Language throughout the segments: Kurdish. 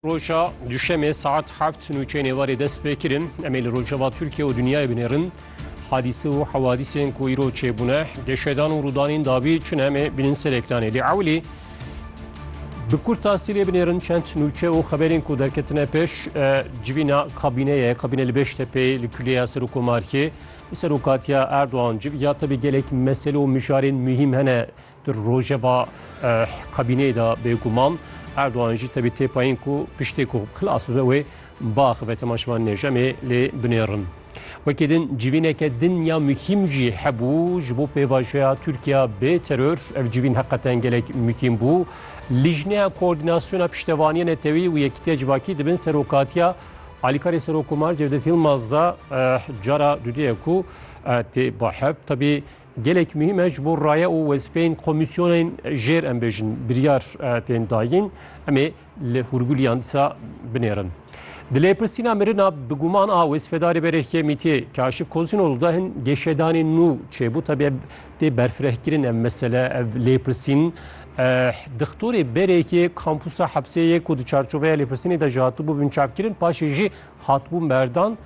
Roja Duşemê saet heft nûçeyên êvarê dest pê kirin. Em ê li rojeva Tirkiye û dinyayê binêrin. Hadîse û hewadîsên ku îro çêbûne, geşedan û rûdanên dabî çi ne em ê bînin ser ekranê. Lê ewilî bi kurtasî lê binêrin çend nûçe û xeberên ku derketine pêş civîna kabîneye, kabîne li Beştepê li kulîya Serokomarkê. Serokatiya Erdogan civiya tevî gelek mesele û mijarên muhîm hene. Di rojeva kabîneyê de bêguman Erdogan jî tevî têpayîn ku piştê ku xilas bibe wê biaxive tema şivan nêjemê lê binêrin. Wekî din civîneke din ya muhîm jî hebû ji bo pêvajoya Tirkiya bê teror ev civîn heqeten gelek muhîm bû. Lijneya Koordînasyona Piştevaniya Netewî û Yekîtiya Civakî di bin serokatiya Alîkarê Serokomar Cevdet Yilmaz de cara dudêye ku tê bahep tevî Gelek muhîm e ji bo raye û wezîfeyên komîsyonên jêr em bêjin biryar tên dayîn em ê li hûrgulîyan dîsa binêrin. Di lêpirsîna mirina bi guman a wezîfedarê berê Hêmîtê Kaşif Kozinol de hin geşedanên nû çêbû tabi ev tê berfirehkirin ev mesele ev lêpirsîn dixtorê berêkê kampusa hepsê yê ku di çarçoveya lêpirsînê de ji hatibû binçavkirin paşê jî hatibû merdan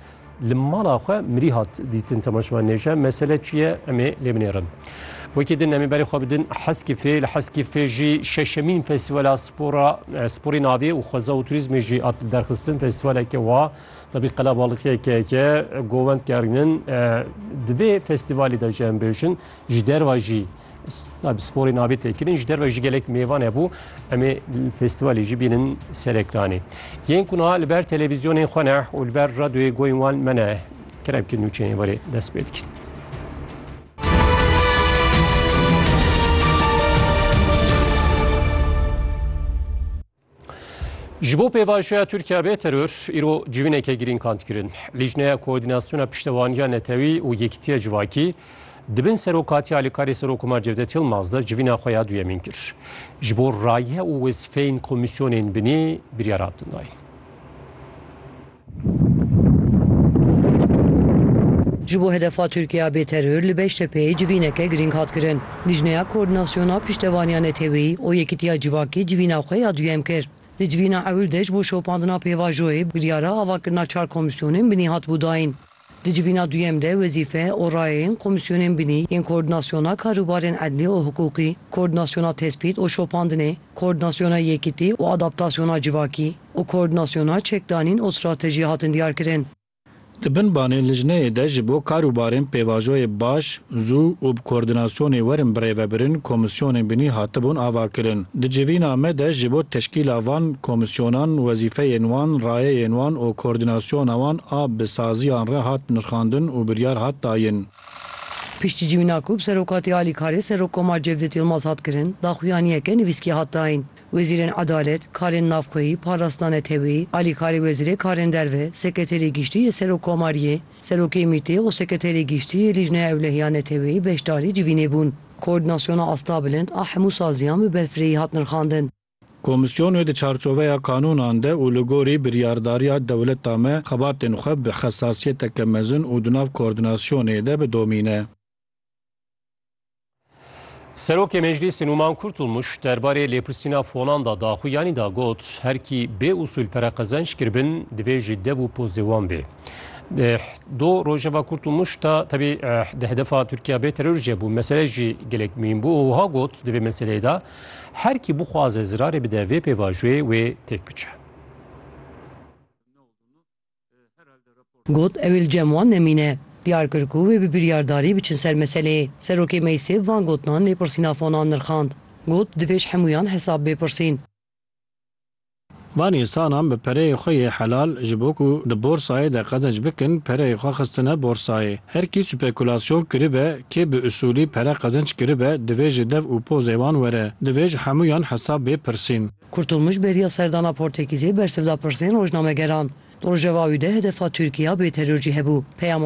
Li mala xwe mirî hat dîtin temaşevan nêşe mesele çi ye em ê lê binêrin. Wekî din em ê berê xwe bidin Heskîfê li Heskîfê jî şeşemîn festîvala spora sporê navê û xweza û turîzmê jî hat li derxistin festîvaleke wa debî qelebalikiyekeke govend gerînin di vê festîvalê de jî em bêjin ji derva jî Sporê navê têkirin ji derve jî gelek mêvan hebû em ê festîvalê jî bînin ser ekranê. Yên ku niha li ber televîzyonên xwe ne û li ber radyoyê goyên wan me ne keremkî nûçeyên werê dest pê dikin. Ji bo pêvajoya Tirkiye bê teror, îro civîneke girîng hand kirin. Lîjneya Koordînasyona Piştevaniya Netewî û Yekîtiya Civakî di bin serokatiya alîkarê Serok Omar Cevdet Yilmaz de civîna xwe ya duyemîn kir. Ji bo raye û wezîfeyên komîsyonên binî biryar hatin dayîn. Ji bo hedefa Tirkiya bê teror li Beştepeyê civîneke girîng hat kirin. Lijneya Koordînasyona Piştevaniya Neteweyî û Yekîtiya Civakê civîna xwe ya duyem kir. Di civîna ewil de ji bo şopandina pêvajoyê biryara avakirina çar komîsyonên binî hatibû dayîn. Di civîna duyem de wezîfe û rayeyên komîsyonên binî yên koordînasyona karûbarên edlî û hiqûqî, koordînasyona tespît û şopandinê, koordînasyona yekitî û adaptasyona civakî û koordînasyona çekdanîn û stratejî hatin diyarkirin. Di binbanê lijneyê de ji bo karûbarên pêvajoyê baş Zû û bi koordinasyonê werin birêvebirin komîsyonên binî hatibûn avakirin. Di civîna me de ji bo teşkîla van komîsyonan wezîfeyên wan, rayeyên wan û koordinasyona wan a bi saziyan re hat nirxandin û biryar hat dayin. Piştî civîna ku bi serokatî alîkarê Serokkomar Cevdet Yilmaz hat kirin, daxuyaniyeke nivîskî hat dayin. Wezîrên Edalet, Karên Navxweyî, Parastina Neteweyî, Alîkarê Wezîrê Karên Derve, Sekreterê Giştî yê Serokkomariyê, Serokê Mîtê û Sekreterê Giştî yê Lîjneya Ewlehiya Neteweyî beşdarî civînê bûn. Koordînasyona Astabilind a hemû saziyan bi berfirehî hat nirxandin. Komîsyonê di çarçoveya qanûnan de û li gorî biryardariya dewleta me xebatên xwe bi xesasiyeteke mezin û di nav koordînasyonê de bidomîne. Serokê Meclîsê Numan Kurtulmuş derbarê lêpirsîna fonan da daxu yanî da got her kî bê usûl pere qezenç kiribin divê ji dev û pozê wan bê. Do Rojava Kurtulmuş da tebî di hedefa Tirkiya bê teror jê bû mesele jî gelek mîn bû û wiha got divê meseleyê da her kî bixwaze zirarê bide vê pêvajoyê wê têk biçe. Got, Ew ê li cem wan nemîne. Diyar kir ku wê bi biryardarî biçin ser meseleyê. Serokê Meysêv van gotinan lêpirsîna fonan nirxand. Got, Divê ji hemûyan hesab bê pirsîn. Van însanan bi pereyê xwe yê helal ji bo ku di borsayê de qezenc bikin pereyê xwe xistine borsayê. Her kî spekulasyon kiribe, kê bi usûlî pere qezenc kiribe divê ji dev û pozê wan were. Divê ji hemûyan hesab bê pirsîn. Kurtulmuş bêriya serdana Portekîzê bersiv da pirsên rojnamegeran. Di rojeva wî de hedefa Tirkîya bêteror jî hebû. Peyama